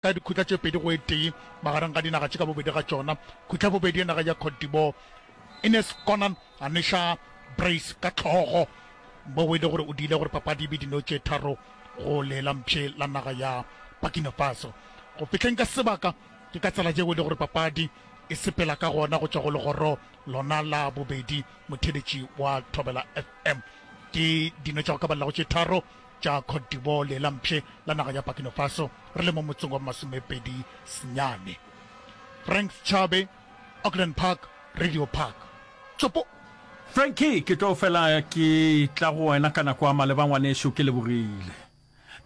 ka dikhutla tše pedi go e tee magareng ga dinaga tše ka bobedi ga tšona. Khutla ya bobedi ya naga ya Cote d'Ivoire, Ines Konan a neša Brace ka hlogo moo e le gore o diile gore papadi e be dino tše tharo go le la mpshe la naga ya Burkina Faso. Go fihleng ka sebaka ke ka tsela yeo e le gore papadi e sepela ka gona go tšwa go legoro lona la bobedi. Motheeletši wa Thobela FM ke dino tša go ka balelago tše tharo tša Cote d'Ivoire le la mpshe la naga ya Burkina Faso re le mo motseng wa bomasomepedi senyane. Frank Schabe, Auckland Park, Radio Park. Tsopo! Frankie, ke tlo fela ke tla go wena ka nako a maleba ngwanešu, ke lebogile.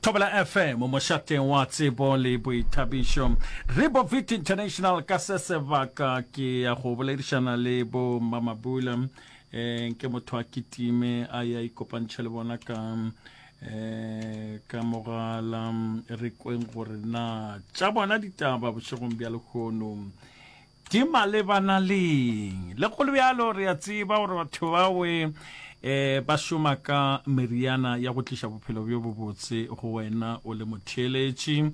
Thobela FM, mošateng wa tsebo le boithabišo. Ribovit International ka se sebaka ke ya go boledišana le bo Mamabula. um ke motho a kitime a ya ikopantšhe le bona ka um ka mogala re kweng gore na tša bona ditaba bošegong bja lekgono di malebana leng le go le bjalo re a tseba gore batho bawe eh ba šoma ka meriana ya go tliša bophelo bjo bobotse go wena o le motheeletši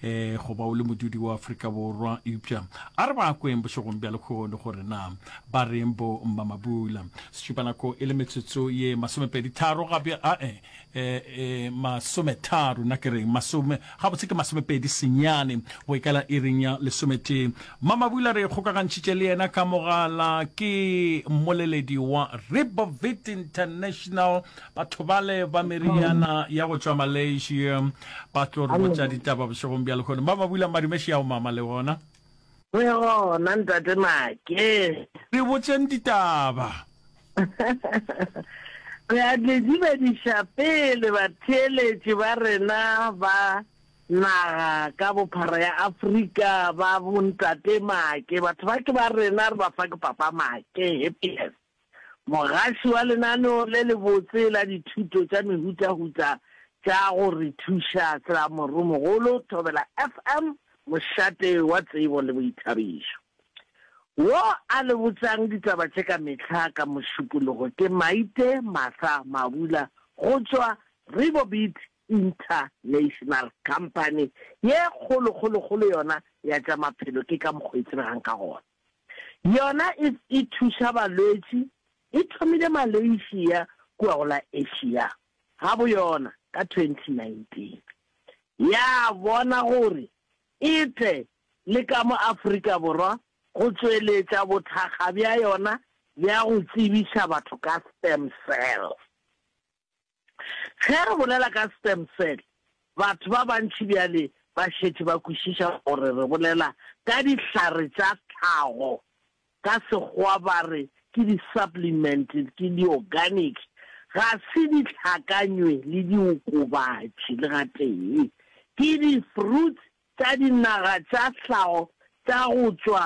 eh goba o le modudi wa Afrika Borwa eupša a re ba kweng bošegong bja lekgono gore na Ba reng bo Mmamabula? Setšupanako e le metsotso ye masomepedi tharo ga bja, a e, e, e, masometharo, na ke reng? Masome, gabotse ke masomepedi senyane go ikala iring ya lesometee. Mmamabula re kgokagantšhitše le yena ka mogala, ke mmoleledi wa Ribovit International, batho bale ba meriana ya go tšwa Malaysia, ba tlo re botša ditaba bošegong bja lehono. Mmamabula, Madumeši ao mama le wona. Re gona, Ntate Make. Re botšeng ditaba. Re a le dumediša pele batheeletši ba rena ba naga ka bophara ya Afrika ba bo Ntate Make. Batho ba ke ba rena, re ba fa ke Papa Make. Happiest. Mogaši wa lenaneo le lebotse la dithuto tša mehutahuta tša go re thuša sa Morumogolo Thobela FM, mošate wa tsebo le boithabišo. Wo a le botšang ditaba tše ka mehla ka Mošupologo ke Maite Martha Mabula go tšwa Ribobit International Company ye kgolokgolokgolo yona ya tša maphelo ke ka mokgo e tsebegang ka gona. Yona e e thuša balwetši e thomile Malaysia kua go la Asia ga bo yona ka 2019. Ya bona gore e tle le ka mo Afrika Borwa go tšweletša bothakga bja yona bja go tsebiša batho ka stem cells. Ge re bolela ka stem cell, batho ba bantši bjale ba šetše ba kwešiša gore re bolela ka dihlare tša tlhago, ka Sekgowa ba re ke di-supplement, ke di-organic, ga se dihlakanywe le diokobatši le gatee. Ke di-fruits tša dinaga tša tlhago tša go tšwa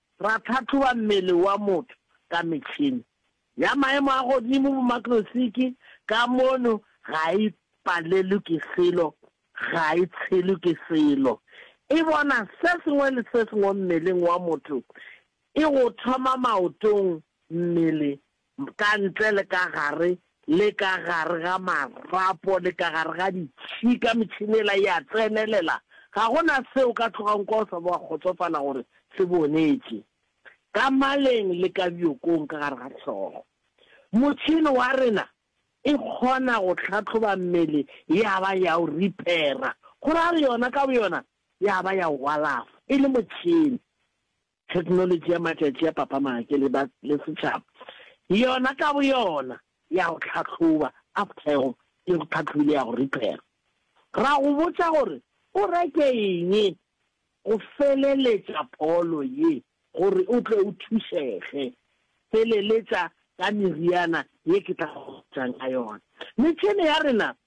Ra tlhahloba mmele wa motho ka metšhene ya maemo a godimo, bomakrosiki, ka mono ga e palelwe ke selo, ga e tshelwe ke selo. E bona se sengwe le se sengwe mmeleng wa motho, e go thoma maotong, mmele, ka ntle le ka gare, le ka gare ga marapo, le ka gare ga ditšhika, metšhene yela e a tsenelela, ga go na se o ka tlogago kwa o sa ba wa kgotsofala gore se bonetše. Ka maleng le ka bjokong ka gare ga hlogo. Motšhene wa rena e kgona go hlahloba mmele ya ba ya o ripera, go ra re yona ka boyona ya ba ya o alafa, e le motšhene. Theknolotši ya matšatši a papamake le ba le setšhaba yona ka boyona ya go hlahloba after e go e go tlhatlhobile ya go repair. Ra go botša gore o reke eng go feleletša pholo ye gore o tle o thušege. Feleletša ka meriana ye ke tla go botšang ka yona. Metšhene ya rena